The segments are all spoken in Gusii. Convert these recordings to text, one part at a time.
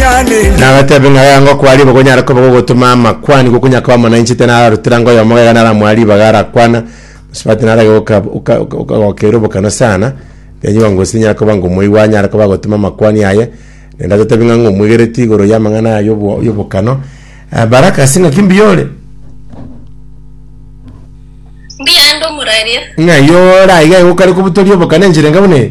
Nagateebia ng'a gaiga ngokwa ribaga onyare koba gogotoma amakwani gokunya koba omonainche tena ararutire anga oyomo gaiga naramoa ribaga arakwana mosubati narage goka oka- oka- okagokeira obokano sana then you are ngosi nyare koba ngo omoigwa anyare koba agotoma amakwani aye naende agotebi ng'a ng'o omwegereti igoro y'amang'ana aya y'obo- y'obokano Ah, Baraka ase ng'aki mbuya ore? Mbuya ande omuraria. ng'ai ore aiga igo okare kobutoria obokana enchera enga buna eye?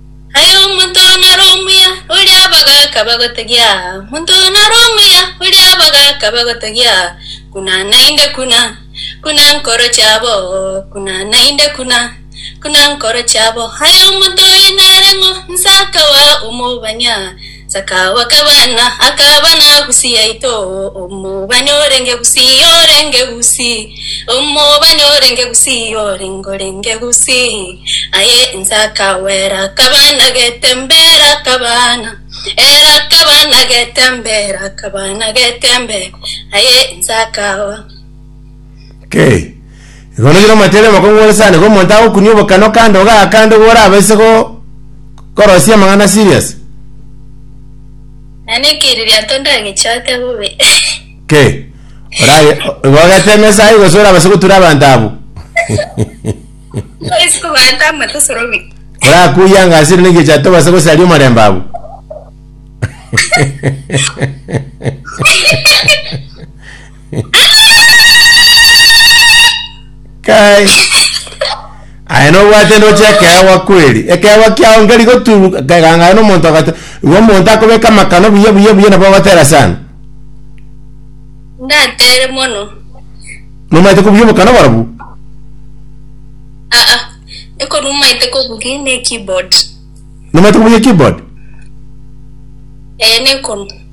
Aye omonto one are omuya, oria abagaaka bagotegia aa, omonto one are omuya, oria abagaaka bagotegia aa, kuna naende kuna, kuna nkoro chiabo, kuna naende kuna, kuna nkoro chiabo. Aye omonto oye nare ng'o, nse akaba omobani aa, Sakabo akabana, akabana Gusi yaito, omobani orenge Gusi, orenge Gusi, omobani orenge Gusi, orenge orenge Gusi. Aye inse akawera, akabana getembera, akabana era akabana getembera, akabana getembera. Aye inse akawa. Kei. Igoro rire omotere omokongu ore sana, igo omonto agokunia obokana okande ogakande igo orabaise go korosia amang'ana serious. Nane ekeririo anto ndagechote bobe. Kei. Oraye igo ogete emesa aye gose orabaise gotura abanto abwo. Ndoisi koganta amato osorobi. Korakuye angasire negecha tobase gosaria omorembe abwo. Kai. Aye nobwate ndoche ekeegwa kweri. Ekeegwa kiao nkeri goturuka kegang'ana na omonto agate. Igo omonto akobeka amakano buya buya buya nabo ogotera sana. ndatere mono Nomaete kobuya obokano barobwo. aa ekorumaete kobugi ne keyboard Nomaete kobuya keyboard. ee nekonu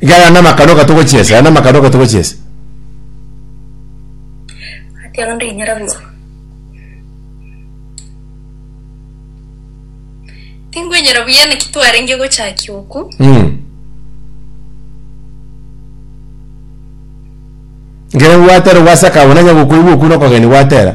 Iga aya namakano oka togochiesa, aya namakano oka togochiesa. Gati onde inyora buna Tingwenyora buya naki twarenge gochakia oku. Mm. Nkere gwatera gwasakabona nya gokoigwa oku nokogeni gwatera.